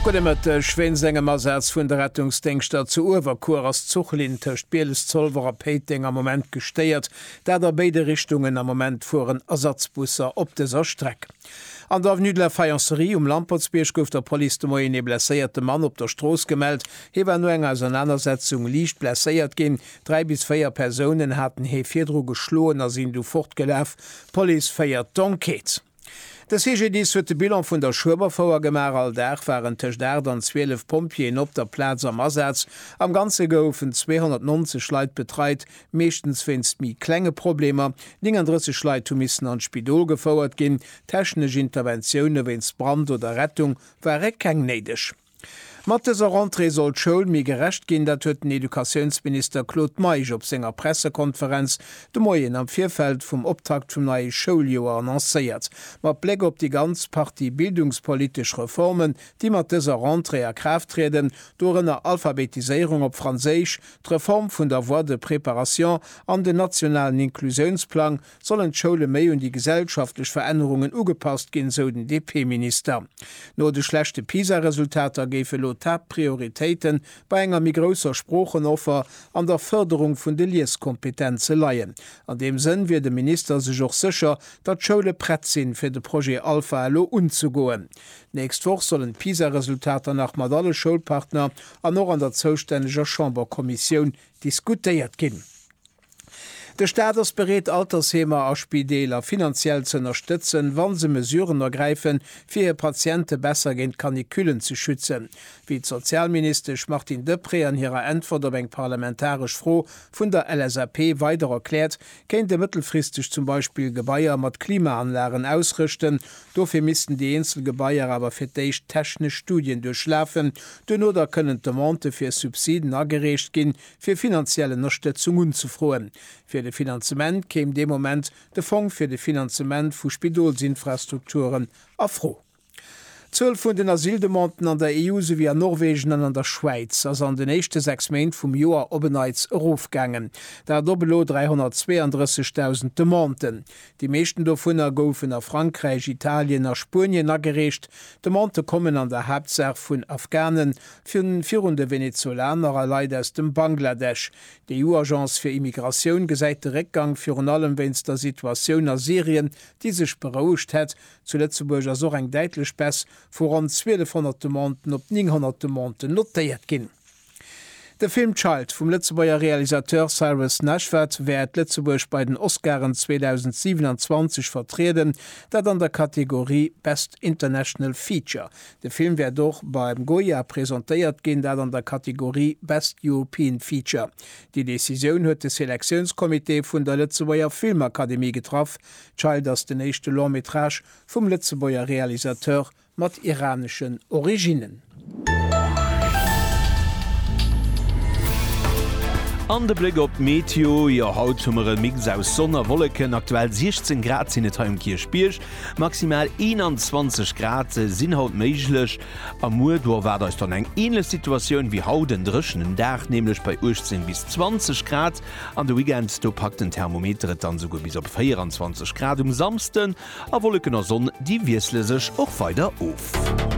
Gudde Mëtteg, Wéinst engem Asaz vun de Rettungsdéngschter zu Uewerkuer ass d'Zuchlinn tëscht Bieles-Zolwer a Péiteng am Moment gestéiert. Dat a béide Richtungen, am Moment fueren Ersatzbusser op dëser Streck. An der Avenue de la Faïencerie um Lampertsbierg gouf der Police de Moien ee blesséierte Mann op der Strooss gemellt. Hie war no enger Ausernanersetzung liicht blesséiert ginn. Dräi bis véier Persounen haten hie virdru geschloen a sinn du fortgelaf. D'Police féiert d'Enquête. De CGDIS huet de Bilan vun der Schueberfouer gemaach. All Dag waren tëscht 8 an 12 Pompjeeën op der Plaz am Asaz. Am Ganze goufen 290 Leit betreit, meeschtens wéinst méi klenge Problemer. 39 Leit hu missen an d'Spidol gefouert ginn. Technesch Interventioune wéinst Brand oder Rettung ware keng néideg. Mat dëser Rentrée soll d'Schoul méi gerecht ginn, dat huet den Educatiounsminister Claude Meisch op senger Pressekonferenz de Moien am Virfeld vum Optakt vum neie Schouljoer annoncéiert. Mat Bléck op déi ganz Partie bildungspolitesch Reformen, déi mat dëser Rentrée a Kraaft trieden, dorënner Alphabetiséierung op Franséisch, d'Reform vun der Voie de préparation an den nationalen Inklusiounsplang, sollen d'Schoule méi un déi gesellschaftlech Verännerungen ugepasst ginn, sou den DP-Minister. No de schlechte PISA-Resultater géif elo d'Haaptprioritéite bei enger méi grousser Sproochenoffer an der Fërderung vun de Lieskompetenze leien. An deem Sënn wier de Minister sech och sécher, datt d'Schoule prett sinn, fir de Projet Alpha elo unzegoen. D'nächst Woch sollen d'PISA-Resultater nach mat alle Schoulpartner an och an der zoustänneger Chamberkommissioun diskutéiert ginn. De Staat ass bereet, Altersheemer a Spideeler finanziell ze ënnerstëtzen, wa se Mesuren ergräifen, fir hir Patiente besser géint d'Canicullen ze schützen, wéi d'Sozialministesch Martine Deprez an hirer Äntwert op eng parlamentaresch Fro vun der LSAP weider erkläert, kéint ee mëttelfristeg zum Beispill Gebaier mat Klimaanlagen ausrëschten. Dofir missten déi eenzel Gebaier awer fir d'éischt technesch Studien duerchlafen. Duerno da kënnen d'Demandë fir Subsiden agereecht ginn. fir finanziell Ënnerstëtzung unzefroen. Fir de Finanzement kéim dee Moment de Fong fir de Finanzement vu Spidolsinfrastrukturen a Fro. D'Zuel vun den Asyldemanden an der EU souwéi an Norwegen an an der Schwäiz ass an den éischte sechs Méint vum Joer op en Neits erofgaangen, dat op elo 332.000 Demanden. Déi meeschten dovunner goufen a Frankräich, Italien a Spuenien agereecht. D'Demandë kommen an der Haaptsaach vun Afghanen, D'Visioun virun de Venezolaner a Leit aus dem Bangladesch. D'EU-Agence fir Immigratioun gesäit de Réckgang virun allem wéinst der Situatioun a Syrien, déi sech berouegt hätt. Zu Lëtzebuerg ass och eng däitlech Baisse vu ronn 1.200 Demanden op 900 Demanden notéiert ginn. De Film Child vum Lëtzebuerger Realisateur Cyrus Nashvad wäert Lëtzebuerg bei den Oscaren 2027 vertrieden, dat an der Kategorie Best International Feature. De Film wäert och beim Goya presentéiert ginn, dat an der Kategorie Best European Feature. Déi Decisioun huet de Selektiounscomité vun der Lëtzebuerger Filmakademie getraff. Child ass den éischte Long Métrage vum Lëtzebuerger Realisateur mat iraneschen Originnen. An de Bléck op d'Meteo, jo haut hu mer e Mix aus Sonn a Wolleken, aktuell 16 Grad sinn et hei um Kierchbierg. Maximal 21 Grad sinn haut méiglech a muer do erwaart eis dann eng änlech Situatioun wéi haut, en dréchenen Dag nämlech bei 18 bis 20 Grad. An de Weekend do packt den Thermometer et dann esouguer bis op 24 Grad um Samsden a Wolleken a Sonn déi wiessle sech och weider of.